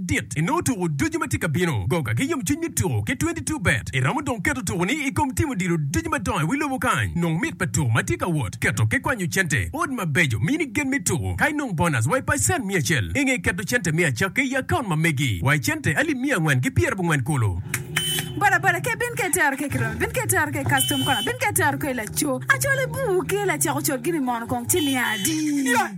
dit i nongo tuku ducu ma tye ka bino. Goga ki yomcwiny me tuku ki 22 bet. I romo dong keto tukuni i kom timo dilo ducu madongo i wi lobo kany. Nong mit pa tuku ma tye ka wot, keto ki kwanyo cente, ot mabeco, mini gen me tuku, ka inong bonus wa i pacen miya acel. I nge keto cente me acakki i akaunt ma megi wa i cente alip miya angwen ki pyer abongwen kulu. Boda boda ke bin ke tero ke kiromi bin ke tero ke kastom kona bin ke tero ke laco. Acol i buu ke lacako col gini mono kong ci miya adi.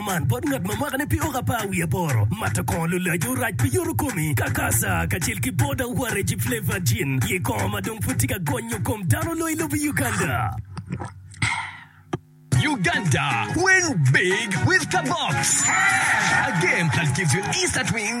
Man bot ngat ma mwakane pe oka par wiye aboro. Mato kongo lulac orac pi yoto komi, kakasa, kacel ki boda waragi flavored gin, ye kongo ma dong pud tye ka gonyo kom dano loyo i lobo Uganda. Uganda win big with Kabox. A game that gives you instant win.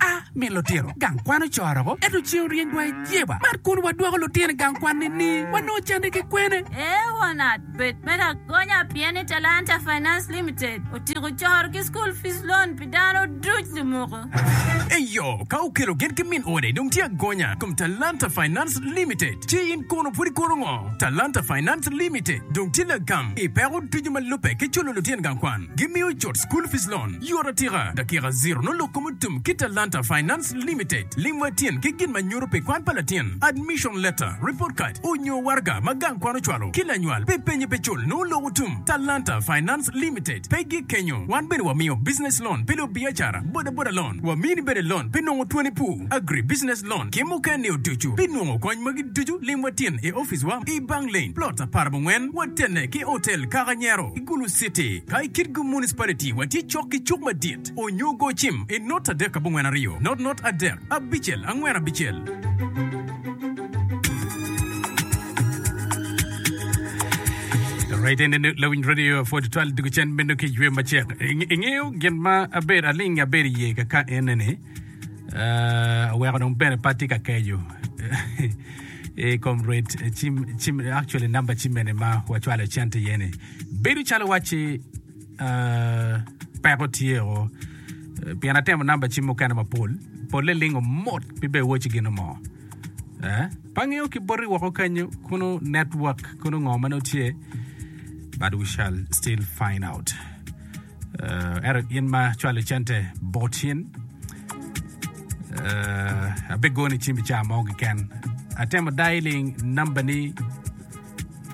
A Mi lutino gang kwan ocoro-gu, ento ceng oryengwa i jeba. Man kono wadwoko lutino i gang kwan ni-ni. Wanongo canne ki kwene? Leonard, Bed me lagonya pien ni Talanta Finance Limited otyeko coro ki school fees loan pi dano duc limuku. Eyo, ka okelo gin ki min ode dong tye agonya i kom Talanta Finance Limited. Ci in kono pud ikono ngo? Talanta Finance Limited dong tye lagam i peko ducu ma lubbe ki culo lutino gang kwan. Gimiyo cut school fees loan. Yot atika, dakika ziro nongo lok kom otum ki Talanta Finance Limited lim wa tyen ki gin ma nyuto pi kwan pa latin, admission letter, report card, onyo waraga ma gang kwan ocwalo ki lanywal pi penye pe cul nongo lok otum. Talanta Finance Limited pe gik kenyo, wan bene wamiyo business loan pi lubiacara, boda boda loan, wamini bene loan pi nongo twoni pur, agri business loan ki muken ni oducu. Pi nongo kony magi ducu lim wa tyen i office wa i Bang Lane, plot apar abongwen, watene ki hotel Kaka Nyero. Gulu City, ka i Kitgum Municipality watye cok ki cuk madit onyo go cim i not adek abongwen aryo, not not adek abicel angwen abicel. aweko dong bene pe atye ka keco i kom ret cim actually namba cim mene ma wacwalo i cente iye ni bedo calo wacci peko tye o pien atemo namba cim mukene mapol polle lingo mot pe bene iwaci gin mo pe angeyo ki boti woko kenyo kono network kono ngo ma nongo tye but we shall still find out Uh, ero in ma cwalo cente bot cin uh, abe goni cim i caa mo kiken atemo dialing namba ni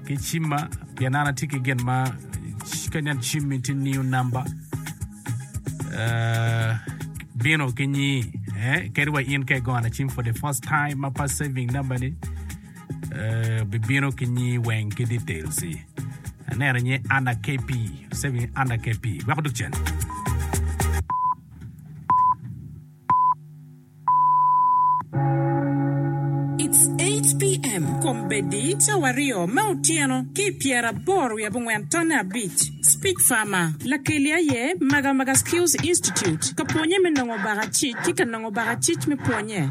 ki cimma pien an atye ki gin ma kanyan cim in tye new namba uh, bino ki nyi eh, kadi wa in ke gona cim for the first time ma pa saving namba ni bibino ki nyingi weng ki details i aneno nying Anna KP save nying Anna KP weko dok cen It's 8 pm kombeddi cawa aryo me otyeno ki i pyeraboro wiye abongwen tonne abic. Speech Farmer, Lakeli aye Magamaga Skills Institute ka pwonye me nongo baka cic ki ka nongo baka cic me pwonye.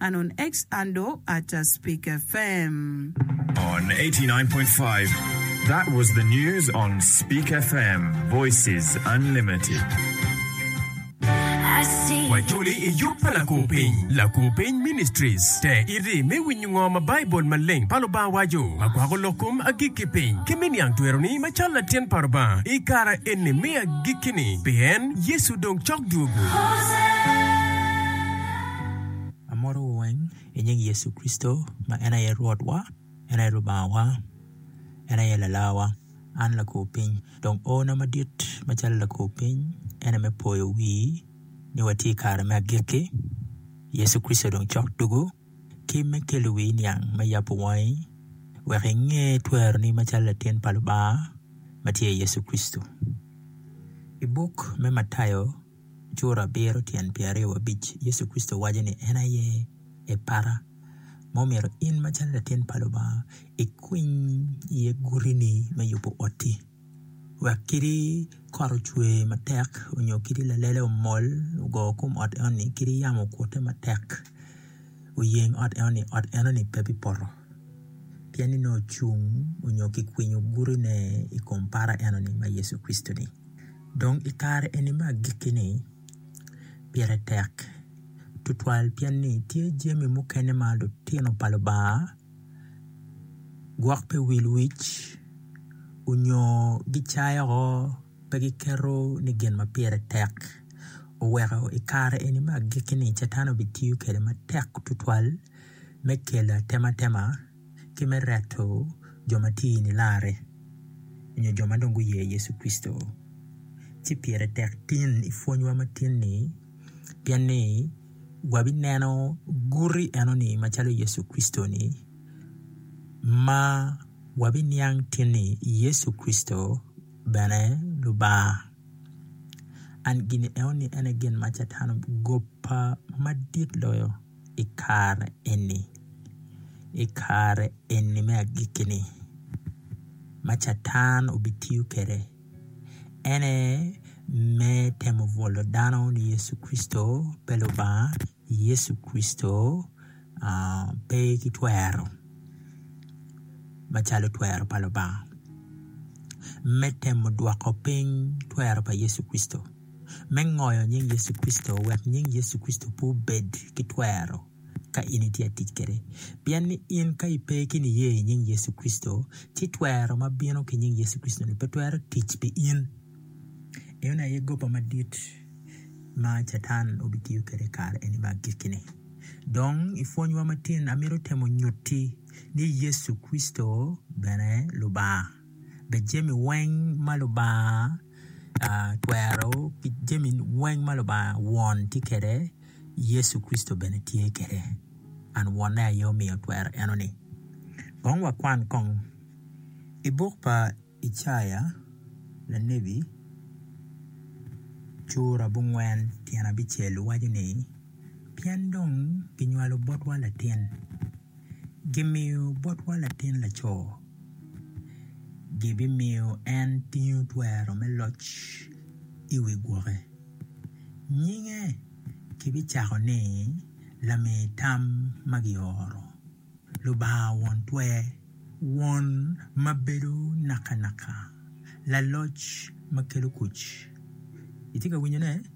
Anon X Ando Atta Speaker FM. On 89.5 That was the news on Speak FM Voices Unlimited. Wacoli i yub pa Lakupiny, Lakupiny Ministries, te iri me winyo ngo ma Baibul maleng pa Lubanga waco ma kwako lok kom agikki piny ki me niang tweroni ma cal latin pa Rubanga i kara eni me agikki-ni, pien Yecu dong cok dwogo. Amotowu weng i nying Yecu Kricito ma en aye Rwotwa, en aye Lubangawa, en aye Lalawa. An lakor piny dong ona madit macalo lakor piny en aye me poyo wii ni watye i kare me agikki. Yecu Kricito dong cok dugu ki me kelo wii niang me yabo wangi wek inge tweroni macalo latin pa Lubanga matye i Yecu Kricito. I buk me Matayo Cura abiro tyen pyeraryo wabic Yecu Kricito waco ni en aye ee para ma omyero in macalo latin pa Lubanga ikwiny iye gutini me yubo oti wek kadi kot ocwe matek nyo kadi lalele omol ogo kom ot enoni kadi yamo okute matek oyeng ot enoni ot enoni pe bipoto. pien ni nongo ocung nyo kikwinyo gurine i kom para enoni ma Yecu Kricitoni dong i kare eni me agikkini pire tek tutwal pien ni tye jami mukene ma lutino pa Lubanga gwok pi wil wic onyo gicayo woko pe giketo ni gin ma pire tek oweko i kare eni me agikkini Catan obitiyo kwede matek tutwal. me kelo atematema ki me reto jo ma tye i nilaare nyo jo ma dong guye Yecu Kricito. Ci pire tek tin i pwonywa ma tin-ni pien ni wabineno guti enoni macalo Yecu Kricito-ni ma wabiniang tin ni Yecu Kricito bene Lubanga. An gin enoni en aye gin ma Catan ogobba madit loyo. i kare eni, i kare eni me agikki-ni ma Catan obitiyo kwede en aye me temo bwolo dano ni Yecu Kricito pe Lubanga, Yecu Kricito pe ki twero macalo twero pa Lubanga me temo dwoko piny twero pa Yecu Kricito. me ngoyo nying Yecu Kricito wek nying Yecu Kricito pe obed ki twero ka in itye ka tic kwede. Pien ni in ka ipe ki niye i nying Yecu Kricito, ci twero ma bino ki nying Yecu Kricito-ni pe twero tic pi in. Enoni aye goba madit ma Catan obitiyo kwede i kare eni me agikki-ni. Dong i pwonywa matin, amito temo nyutti ni Yecu Kricito bene Lubanga. dok jami weng ma Lubanga twero ki jami weng ma Lubanga Won tye kwede, Yecu Kricito bene tye kwede. An Wonne aye omiyo twero enoni. Kong wakwan kong i buk pa Icaya lanebi cura abongwen tyen abicel waco ni, Pien dong kinywalo botwa latin. kimiyo botwa latin laco gibimiyo en tingo twero me loc i wi gwoke nyinge kibicako ni lami tam ma gioro Lubanga won twer won ma bedo nakanaka laloc ma kelo kuc. Itye ka winyone?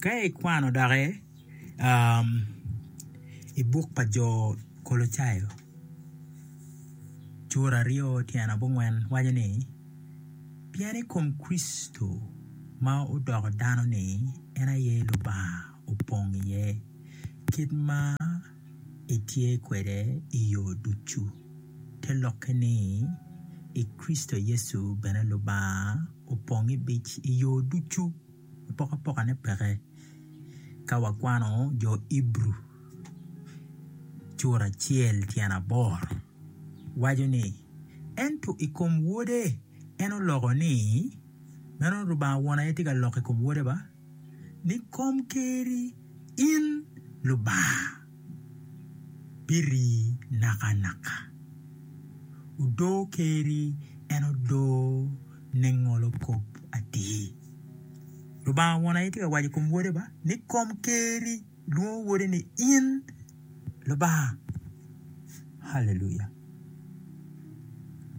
Ka ikwano doki i buk pa jo Kolocayo cura aryo tyen abongwen waco ni, Pien i kom Kricito ma odoko dano-ni en aye Lubanga opong iye, kit ma etye kwede i yo ducu, te lokke ni, i Kricito Yecu bene Lubanga opong i yo ducu. pokapokane peke ka wakwano jo Ibru cura acel tyen aboro waco ni, Ento i kom Wode en oloko ni, meno Lubanga Won aye tye ka loko i kom Wode ba, ni, Kom keri in Lubanga. biri nakanaka. Odoo Ker-ri en odoo ningolo kop atir. Lubanga Won aye tye ka waco i kom Wode ba ni, Kom Ker-ri lwongo Wode ni in Lubanga. Haleluya!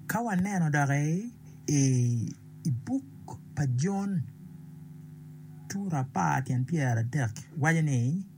Ka waneno doki i buk pa Jon cura apar tyen pyerarek waco ni.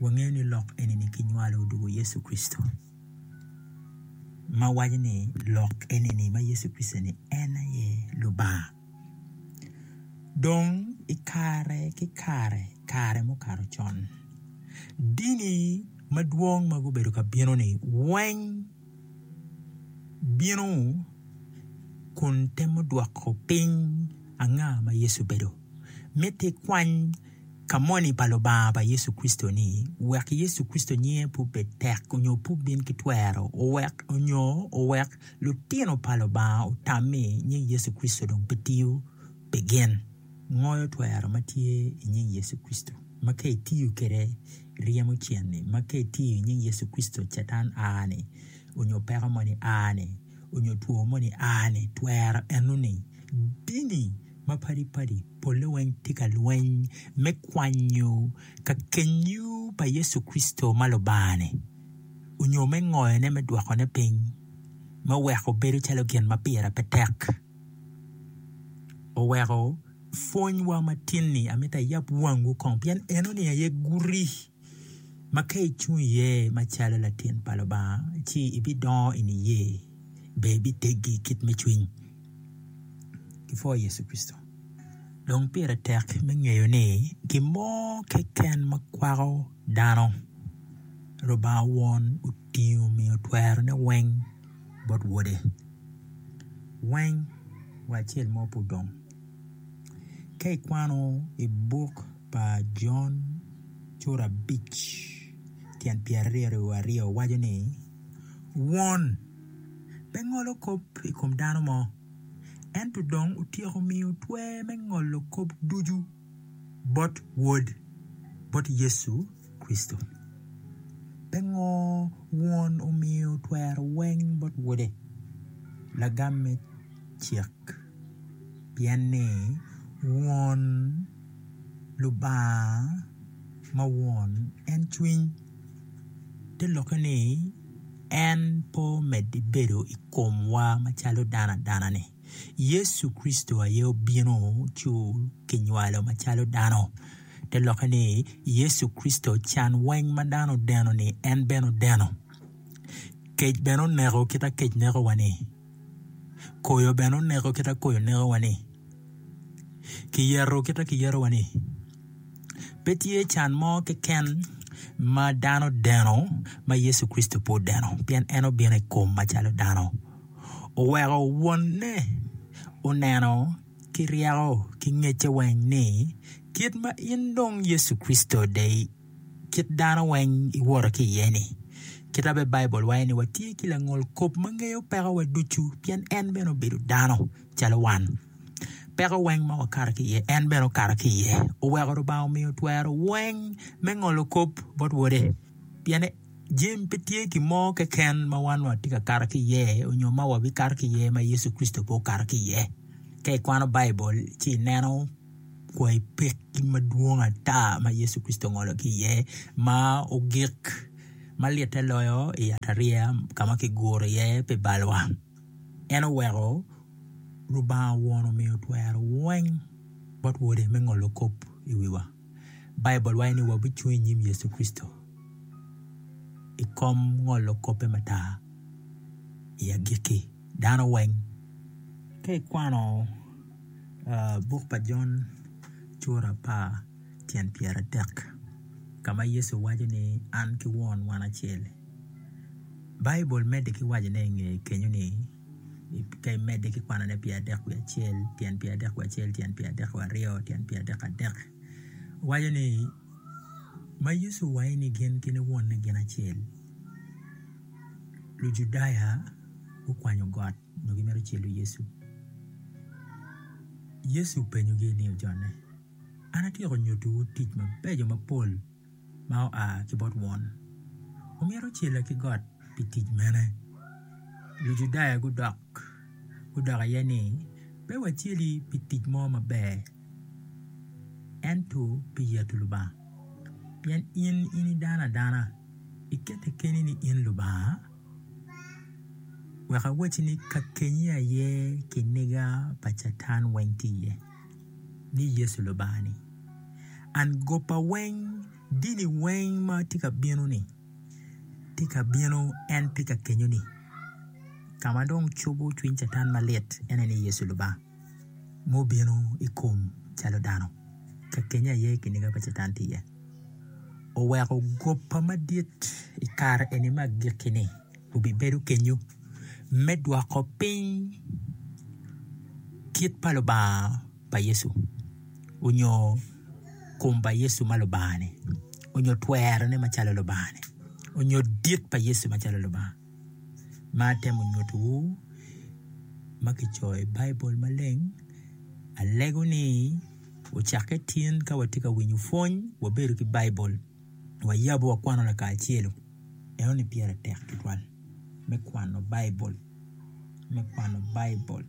wangeyo ni lok eni kinywalo odwogo Yecu Kricito ma waco ni lok eni ni ma Yecu Kricito ni en aye Lubanga dong i kare ki kare kare mukato con dini madwong ma gubedo ka bino ni weng bino kun temo dwoko piny anga ma Yecu obedo miti kwany ka moni pa Lubanga pa Yecu Kricito ni, wek Yecu Kricito nyinge pe obed tek onyo pe obin ki twero, owek, onyo owek lutino pa Lubanga otam ni nying Yecu Kricito dong pe tiyo pi gin. Ngoyo twero ma tye i nying Yecu Kricito, ma ka itiyo kwede ryemo cen-ni, ma ka itiyo i nying Yecu Kricito Catan a ni, onyo peko moni a ni, onyo two moni a ni, twero eno-ni dini. ma padi padi pole weng tye ka lweny me kwanyo ka kenyu pa Yecu Kricito ma Lubanga-ni, onyo me ngoyo ne me dwoko ne piny me weko bedo calo gin ma pire pe tek. Oweko pwony wa ma tin ni amito ayab wangwu kong pien eno ni aye guti. ma ka icung iye macalo latin pa Lubanga ci ibidongo i niye, dong ibiteggi i kit me cwiny ki pwo Yecu Kricito. Dong pire tek me ngeyo ni gin mo keken ma kwako dano Lubanga Won otingo omiyo twerone weng bot Wode weng wa acel mo pe odong. Ka ikwano i buk pa Jon cura abic tyen pyeraryo wa aryo waco ni, Won pe ngolo kop i kom dano mo, ento dong otyeko miyo twer me ngolo kop ducu bot Wod, bot Yecu Kricito. Pingo Won omiyo twero weng bot Wode? Lagam me cik. pien ni won Lubanga ma won en cwiny te lokke ni en pe omedde bedo i komwa macalo dano adanani Yecu Kricito aye obino ci okinywalo macalo dano te lokke ni Yecu Kricito can weng ma dano odeno-ni en bene odeno kec bene oneko kit ma kec neko wa-ni. Koyo bene oneko kit ma koyo nekowani, kiyeto kit ma kiyetowani. Pe tye can mo keken ma dano odeno ma Yecu Kricito pe odeno pien en obino i kom macalo dano. Oweko Wonne oneno ki ryeko ki ngecce weng ni kit ma in dong Yecu Kricito de-ni. kit dano weng iwoto ki iye-ni. Kita bene Baibul waco ni watye ki langolkop ma ngeyo pekowa ducu pien en bene obedo dano calo wan. Peko weng ma wakato ki iye en bene okato ki iye. Oweko Lubanga omiyo twero weng me ngolo kop bot Wode pien jami pe tye gin mo keken ma wan watye ka kato ki iye nyo ma wabikato ki iye ma Yecu Kricito pe okato ki iye. Ka ikwano Baibul ci ineno. kwai pekki madwong ata ma Yecu Kricito ongolo ki iye ma ogik ma litte loyo i yatariya ka ma kiguro iye pi balwa. En oweko Lubanga Won omiyo twero weng bot Wode me ngolo kop i wiwa. Baibul waco ni wabicung i nyim Yecu Kricito i kom ngolo kobbe mata i agikki. Dano weng ka ikwano Buk pa Jon cura apar tyen pyeratek ka ma Yecu waco ni an ki Won wan acel. Baibul medde ki waco i nge kenyo ni ka imedde ki kwanone pyera adek wiye acel tyen pyera adek wiye acel tyen pyera adek wiye aryo tyen pyera adek adek waco ni ma Yecu owaco ni gin ki Wonne gin acel Lujudaya gukwanyo got. nyo gimito celo Yecu. Yecu openyogi ni, Ojonne, an atyeko nyutiwu tic mabeco mapol ma oa ki bot Won. Wumito cela ki got pi tic mene? Lujudaya gudok gudok iye ni, Pe waceli pi tic mo maber, ento pi yeto Lubanga, pien in ini dano adana, iketti keni ni in Lubanga. Wek awacci ni kakenyi aye kiniga pa Catan weng tye iye, ni Yecu Lubanga-ni. An goba weng, dini weng ma tye ka bino-ni, tye ka bino en tye ka kenyoni. Ka ma dong cobo cwiny Catan malit ene ni Yecu Lubanga. ma obino i kom calo dano ka kenya aye kiniga pa catan tye iye oweko goba madit i kare eni ma agikkini obibedo kenyo me dwoko piny kit pa Lubanga pa Yecu onyo kom pa Yecu ma Lubanga-ni onyo twerone macalo Lubanga-ni onyo dit pa Yecu macalo Lubanga. ma atemo nyutiwu ma kicoyo i Baibul maleng alego ni cakke tin ka watye ka winyo pwony wabedo ki Baibul wayabu wakwano lakacelu eno ni pire tek tutwal me kwano Baibul me kwano Baibul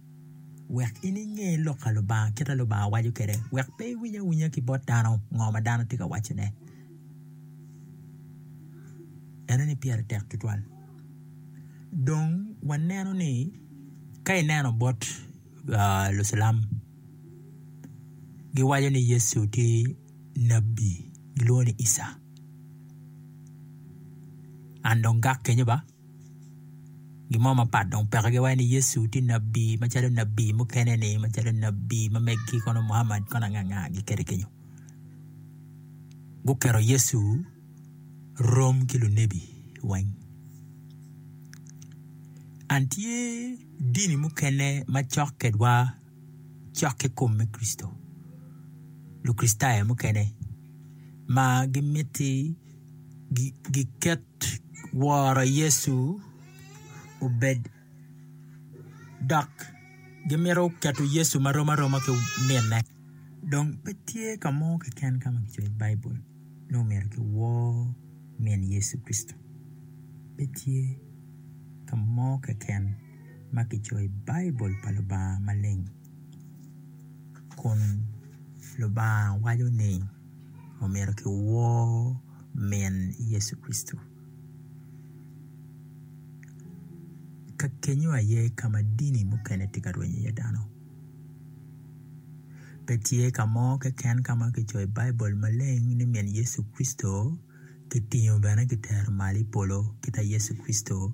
wek in inge lok pa Lubanga kit ma Lubanga waco kwede wek pe iwiny awinya ki bot dano ngo ma dano tye ka wacone. ene ni pire tek tutwal dong waneno ni ka ineno bot lucilam giwaco ni Yecu tye nabi gilwongo ni Ica and dong gak kenyo ba. Gin mo mapat dong peke ki waci ni Yecu tye nabi macalo nabi mukene ni macalo nabi ma megi kono Muhamad kono anga anga gikene kenyo. Guketo Yecu rom ki lunebi weng. An tye dini mukene macok kwedwa. cok ki kom me Kricito. Lukricitayo mukene ma gimiti giket woro Yecu obed dok gimito keto Yecu ma rom aroma ki minne dong pe tye ka mo keken ka ma kicoyo i Baibul ni omyero kiwor min Yecu Kricito pe tye ka mo keken. ma kicoyo i Baibul pa Lubanga maleng kun Lubanga waco ni omyero kiwor min Yecu Kricito. Ka kenyo aye ka ma dini mukene tye ka rwenyo iye dano pe tye ka mo keken ka ma kicoyo i Baibul maleng ni min Yecu Kricito kitingo bene kitero malo i polo kita Yecu Kricito.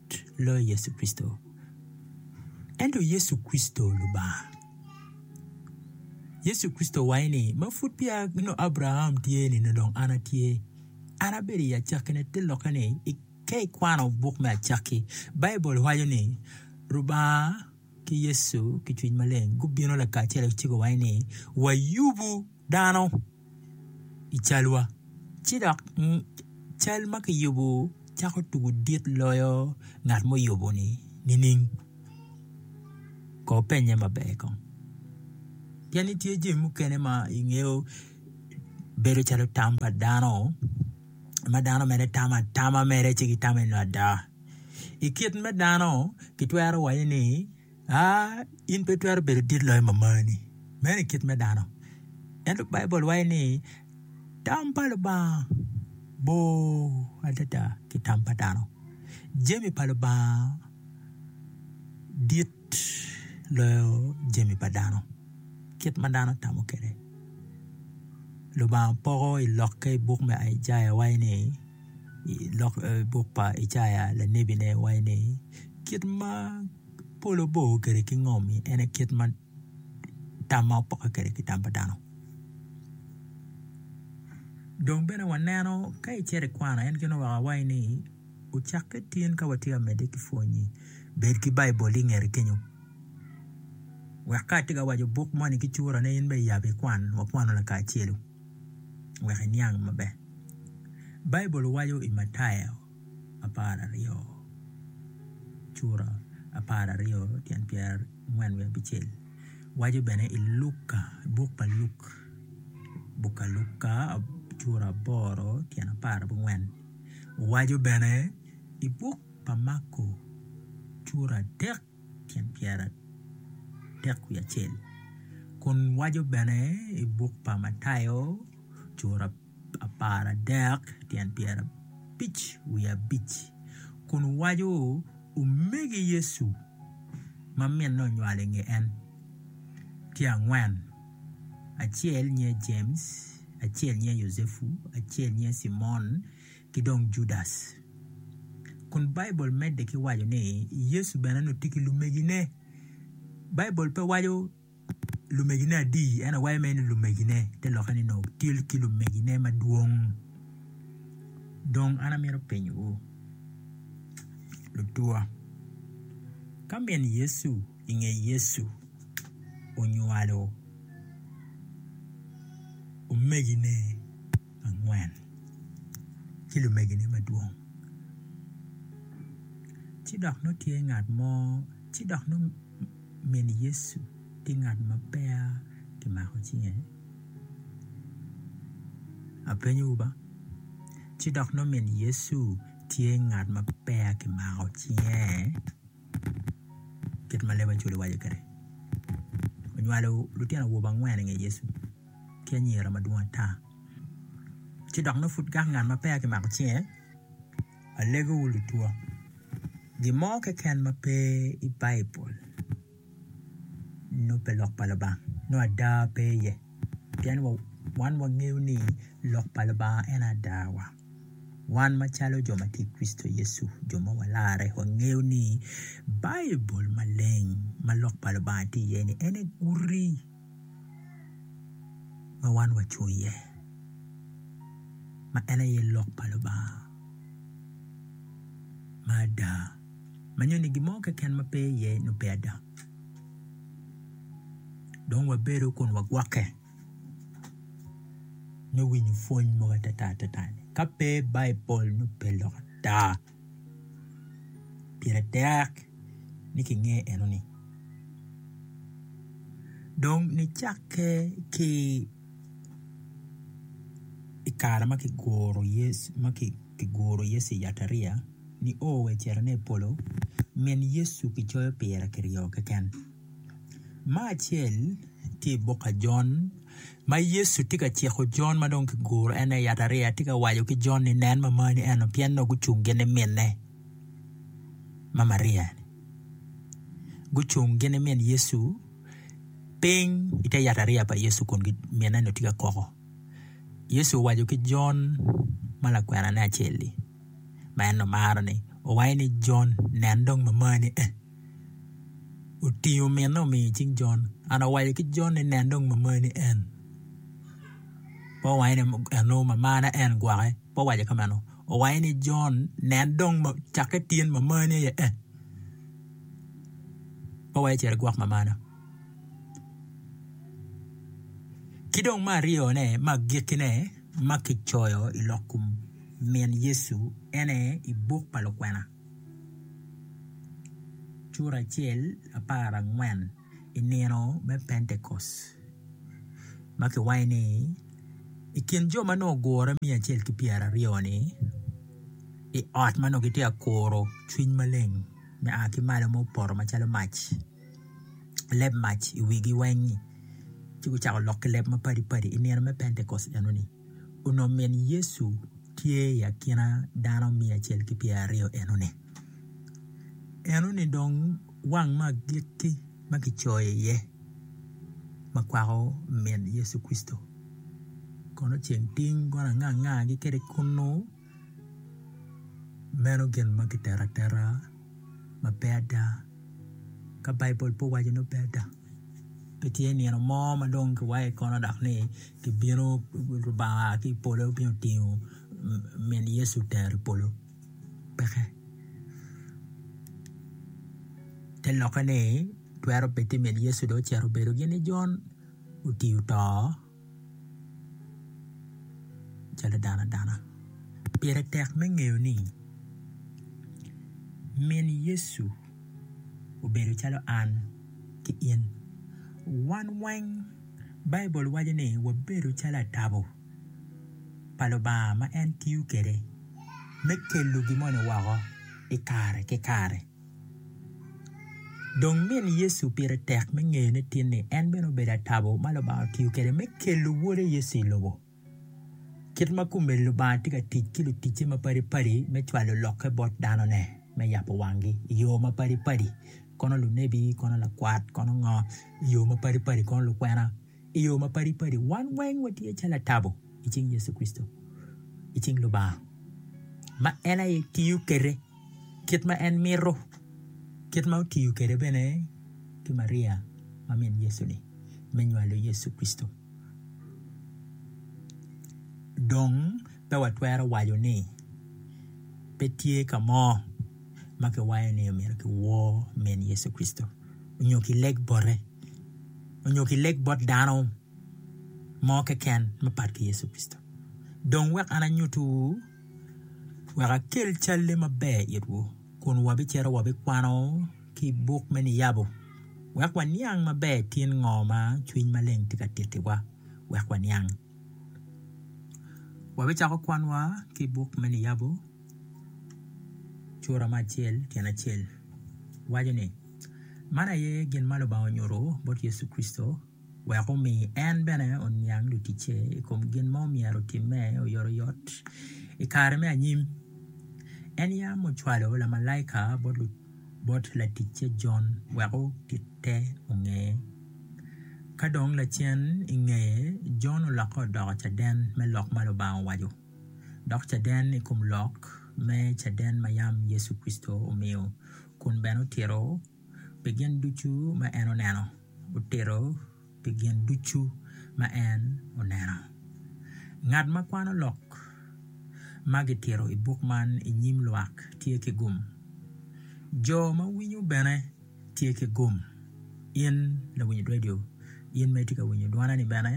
loyo Yecu Kricito. Ento Yecu Kricito Lubanga. Yecu Kricito waco ni, ma pud peya nongo Abraram tye ni nongo dong an atye. An abedo i acakkine te lokke ni ka ikwano buk me acakki, Baibul waco ni Lubanga ki Yecu ki cwiny maleng gubino lakacel ci guwaco ni wayubu dano i calwa ci dok cal ma kiyubo cako tugo dit loyo ngat ma oyuboni nining? Ko opennye maber kong pien ni tye jami mukene ma ingeyo bedo calo tam pa dano ma dano mere tamo atama mere ci gitame nada. I kit me dano kitwero waco ni Aa, in pe itwero bedo dit loyo mamani. Meno i kit me dano. Ento Baibul waco ni tam pa Lubanga bor adada ki tam pa dano. Jami pa Lubanga dit loyo jami pa dano, kit ma dano tamo kwede. Lubanga poko i lokke i buk me Icaya waco ni i buk pa Icaya lanebine waco ni kit ma. Polo bo kede ki ngom en aye kit ma tam ma opokke kwede ki tam pa dano dong bene waneno ka icito ikwano en gin oweko awaci ni ocakke tin ka watye ka medde ki pwonyi bed ki baibul ingete kenyo wek ka atye ka waco buk moni ki curane in bene yab ikwan wakwanu lakacelu wek iniang maber Baibul waco i Mataya apararyo cura apararyo tyen pyerangwen wiye abicel waco bene i Luka buk pa Luk buk pa Luka cura aboro tyen apar ki angwen waco bene i buk pa Mako cura adek tyen pyeraadek wiye acel kun waco bene i buk pa Matayo cura apar adek tyen pyerabic wiye abic kun waco omege Yecu ma mine onywalo i nge en tye angwen acel nyinge James acel nyinge Yucepu acel nyinge Cimon ki dong Judas kun Baibul medde ki waco ni Yecu bene nongo tye ki lumegine Baibul pe waco lumegine adi? En awaco mere ni lumegine, te lokke ni nongo otyel ki lumegine madwong. Dong an amito penyowu lutuwa, ka min Yecu i nge Yecu onywalo omegine angwen ki lumegine madwong, ci dok nongo tye ngat mo ci dok nongo Min Yecu tye ngat ma peya kimako cinge? Apenyowu ba. Ci dok nongo min Yecu tye ngat ma peya kimako cinge? Kit ma leb Acwele waco kwede, onywalo lutino awobe angwen i nge Yecu ki anyira madwong ata. Ci dok nongo pud kaka ngat ma peya kimako cinge? Alegowu lutwa, gin mo keken ma pe i Baibul nongo pe Lok pa Lubanga, nongo ada pe iye. Pien wan wangeyo ni Lok pa Lubanga en aye adawa. Wan macalo jo ma tye i Kricito Yecu, jo ma walarre, wangeyo ni Baibul maleng ma Lok pa Lubanga tye iye-ni en aye guti. ma wan waco iye ma en aye lok pa Lubanga ma ada ma nyoni gin mo keken ma pe iye nongo pe ada dong wabedo kun wagwokke me winyo pwony mogo atata atata-ni ka pe Baibul nongo pe lok ada. pire tek ni kinge enoni dong nicakke ki i kare ma kiguro Yecu ma kiguro Yecu i yatariya nio wa ocito ine i polo min Yecu kicoyo pire kiryo keken. Ma acel tye i buk ajon ma Yecu tye ka ciko jon ma dong kiguro en aye yatariya tye ka waco ki jon ni nen mamar ni eno pien nongo gucung gin ki minne ma Maria gucung gin ki min Yecu piny i te yatariya pa Yecu kun minne ni tye ka koko Yecu owaco ki jon ma lakwenane acel-li ma en omaro ni owaco ni jon nen dong mamar ni en. otingo mine omiyo i cing Jon. An awaco ki Jon ni, 'Nen dong mamani en. Pe owange ni, 'Eno mamana en gwokke. Pe owaco kameno. Owange ni, 'Jon, nen dong cakke tyen mamani aye en. Pe owaco ni, 'Cit igwok mamana. Ki dong me aryone, me agikkine ma kicoyo i lok kom min Yecu en aye i buk pa lukwena. I nino me pentekost ma kiwaco ni i kin jo ma nongo gugure miya acel ki pyera aryo ni i ot ma nongo kitye ka kuro cwiny maleng ma oa ki malo ma opoto macalo mac leb mac i wigi weng ci gucako lok ki leb mapadi padi i nino me pentekost enoni. Onongo min Yecu tye i akina dano miya acel ki pyeraryo enoni. Enoni dong wang me agikki ma kicoyo iye ma kwako min Yecu Kricito kono ceng tiny gone angangagi kwede kunnu. Meno gin ma kiteto ateta ma pe ada ka Baibul pe owaco ni pe ada pe tye nino mo ma dong kiwayo i kona dok ni kibino Lubanga oa ki i polo obino tingo min Yecu otero i polo peke. Te lokke ni twero bed ni min Yecu dong ocito obedo gin ni Jon oti oto. calo dano adana pire tek me ngeyo ni min Yecu obedo calo an ki in wan weng baibul waco ni wabedo calo atabo pa Lubanga ma en tiyo kwede me kelo gin moni woko i kare ki kare. Dong min Yecu pire tek me ngeyo ni tinni en bene obedo atabo ma Lubanga otiyo kwede me kelo Wode Yecu i lobo. Kit ma kumeni Lubanga tye ka tic ki luticce mapadipadi me cwalo lokke bot danone me yabo wangi i yo mapadipadi, kono lunebi, kono lakwat, kono ngo, i yo mapadipadi, kono lukwena i yo mapadipadi. Wan weng watye calo atabo i cing Yecu Kricito, i cing Lubanga ma en aye tiyo kwede. kit ma en mito, kit ma otiyo kwede bene ki Maria ma min Yecu-ni me nywalo Yecu Kricito. Dong pe watwero waco ni pe tye ka mo ma kiwaco ni omyero kiwor min Yecu Kricito nyo kileg bote nyo kileg bot dano mo keken mapat ki Yecu Kricito. Dong wek an anyutiwu. wek akel calle maber itwu kun wabicito wabikwano ki i buk me niyabo wek waniang maber tyen ngo ma cwiny maleng tye ka tittiwa wek waniang wabicako kwanwa ki i buk me niyabo cura me acel tyen acel waco ni, Man aye gin ma Lubanga onyuto bot Yecu Kricito. wek omi en bene oniang luticce i kom gin ma myero otimme oyotoyot i kare me anyim. En yam ocwalo lamalaika bot laticce Jon wek otitte onge. Ka dong lacen i ngeye, Jon olokke odoko caden me lok ma Lubanga owaco, dok caden i kom lok me caden ma yam Yecu Kricito omiyo kun bene otito. pi gin ducu ma en oneno, otito pi gin ducu ma en oneno. Ngat ma kwano lok ma gitito i buk man i nyim lwak tye ki gum. Jo ma winyo bene tye ki gum. In lawiny redio, in ma itye ka winyo dwana-ni bene,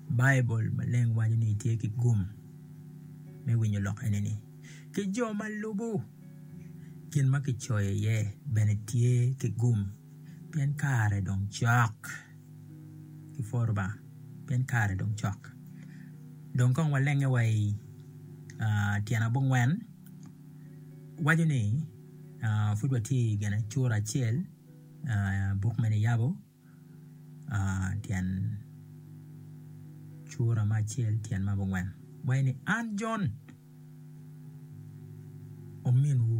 Baibul maleng waco ni itye ki gum me winyo lok enini. ki jo ma lubo gin ma kicoyo iye bene tye ki gum pien kare dong cok ipwor Lubanga pien kare dong cok dong kong walenge wa i tyen abongwen waco ni pud watye i gin cura acel buk mene yabo. tyen cura me acel tyen me abongwen waci ni an Jon ominwu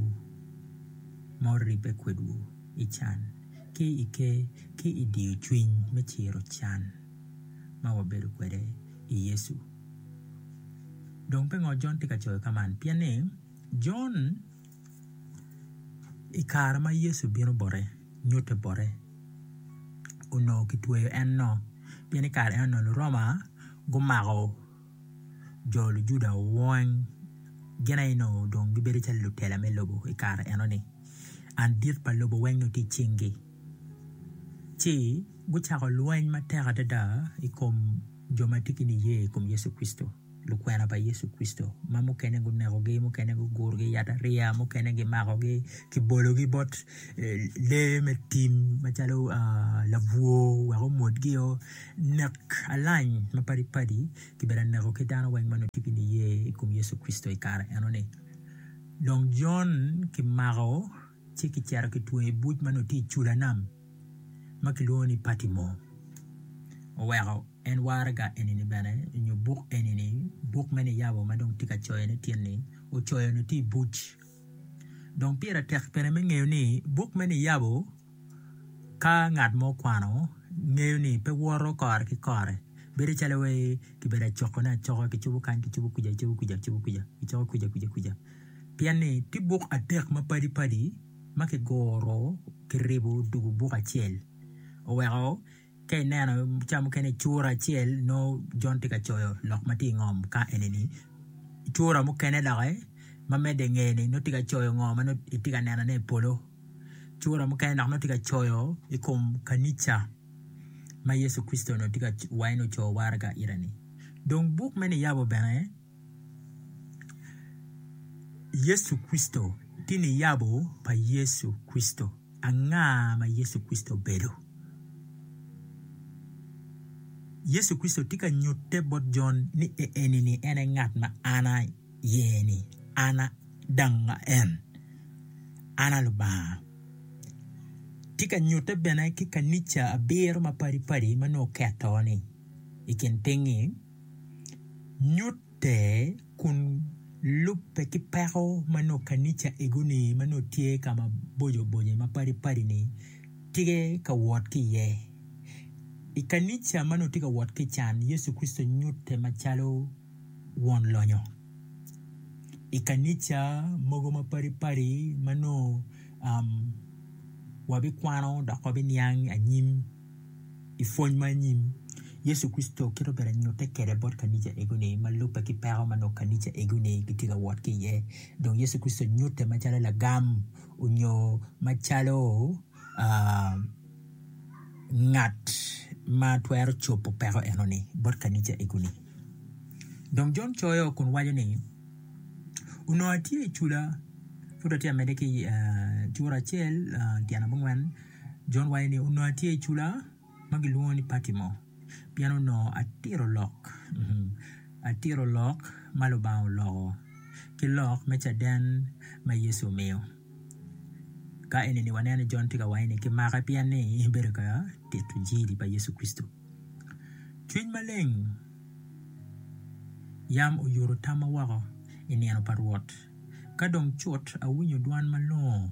ma oribbe kwedwu i can ki i ker ki i diyo cwiny me ciro can ma wabedo kwede i Yecu dong pingo Jon tye ka coyo ka man pienni Jon I kare ma Yecu obino bote nyuto bote onongo kitweyo en nok pien i kare eno Luroma gumako jo lujuda weng gin aye onongo dong gibedo calo lutela me lobo i kare enoni and dit pa lobo weng dong tye i cingi ci gucako lweny matek adada i kom jo ma tye ki niye i kom Yecu Kricito. lukwena pa Yecu Kricito ma mukene gunekogi, mukene gugurogi i yatariya, mukene gimakogi kibologi bot lee me tim macalo labwor wek omwodgio. Nek alac mapadi padi kibene aneko ki dano weng ma tye ki niye i kom Yecu Kricito i kare enoni. Dong Jon kimako. ci kicito kitweyo i buc ma nongo tye i cula nam ma kilwongo ni Patimo. Oweko en waraga eni bene nyo buk eni, buk me niyabo ma dong tye ka coyone tyen ni ocoyo nongo tye i buc. Dong pire tek bene me ngeyo ni buk me niyabo ka ngat mo okwano ngeyo ni pe woto kore ki kore bedo calo wai kibedo acokone acoka kicobo kany kicobo kwica kicobo kwica kicobo kwica kicobo kwica kwica kwica. pien ni tye buk adek ma padi padi ma ki guru ki ribu dugu buk acel oweko ka ineno cawa mukene cura acel nongo Jon tye ka coyo lok ma tye ingom ka enini cura mukene doki ma medde ingeye ni nongo tye ka coyo ngo ma nongo itye ka nenone i polo cura mukene dok nongo tye ka coyo i kom kanica ma Yecu Kricito onongo tye ka wa en ocoyo waraga ite-ni dong buk me Niyabu bene Yecu Kricito, Tin Niyabo pa Yecu Kricito, Anga ma Yecu Kricito obedo? Yecu Kricito tye ka nyutte bot Jon ni enini en aye ngat ma an ayeni, an adanga en, an aye Lubanga. Tye ka nyutte bene ki kanica abiro mapadi padi ma nongo oketo-ni i kin piny-nyi. nyutte kun lubbe ki peko ma nongo kanica ego-ni ma nongo tye ka maboco boco mapadi padi-ni tye ka wot ki iye. I kanica ma nongo tye ka wot ki ican Yecu Kricito nyutte macalo won lonyo. I kanica mogo mapadi padi ma nongo wabikwano dok wabiniang anyim I pwony ma anyim, Yecu Kricito kit obedo anyutte kede bot kanica ego-ni ma lubbe ki peko ma nongo kanica ego-ni gitye ka wot ki iye. Dong Yecu Kricito nyutte macalo lagam onyo macalo ngat ma twero cobo peko eno-ni bot kanica ego-ni. Dong Jon coyo kun waco ni, Onongo atye i cula, pud atye ka medde ki cura acel tyen abongwen. Jon waco ni, Onongo atye i cula ma gilwongo ni Patimo pien onongo atito lok, atito lok ma Lubanga oloko ki lok me caden ma Yecu omiyo. Ka eni waneno ni Jon tye ka waco ni kimake pien ni bedo ka tito Injili pa Yecu Kricito. Cwiny maleng yam oyuto tamma woko i nino pa Rwot, ka dong cut awinyo dwan malongo.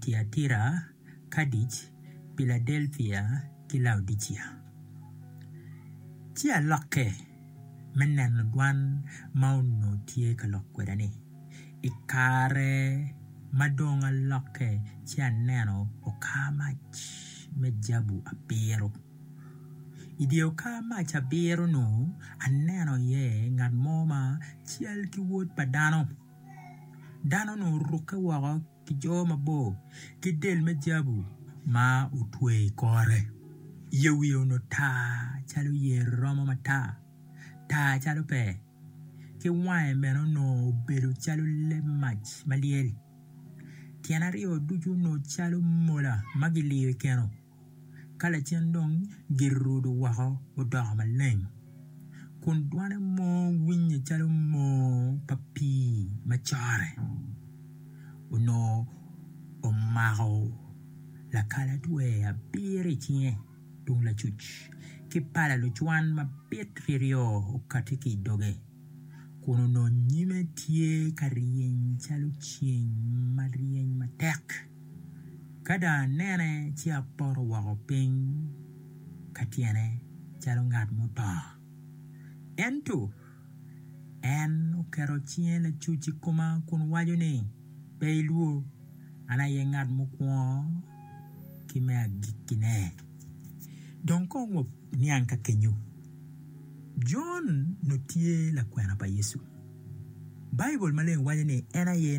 Tiatira, Kardic, Piladelpia, ki Laodicia. Ci alokke me neno dwan ma onongo tye ka lok kweda ni, I kare ma dong alokke ci aneno okar mac me jabu abiro. I dye okar mac abiro-nu, aneno iye ngat mo ma cal ki Wod pa dano. Dano onongo orukke woko ki jo mabor ki del me jabu ma otweyo i kore. Yie wiye onongo tar calo yer romo matar, tar calo pee, ki wange bene onongo obedo calo leb mac ma lyel. Tyene aryo ducu onongo calo mola ma giliyo i keno. Ka lacen dong gir orudo woko odoko maleng, kun dwane mo winye calo moo pa pii ma corre. Onongo omako lakalatwer abiro i cinge tung lacuc, ki pala lucwan mabit ryoryo okati ki i doge. kun onongo nyime tye ka ryeny calo ceng ma ryeny matek. Ka dong anene ci apoto woko piny ka tyene calo ngat muto. Ento en oketo cinge lacuc i koma kun waco ni, Pe ilwor, an aye ngat mukwongo ki me agikkine. Dong kong waniang ka kenyo. Jon onongo tye lakwena pa Yecu. Baibul maleng waco ni en aye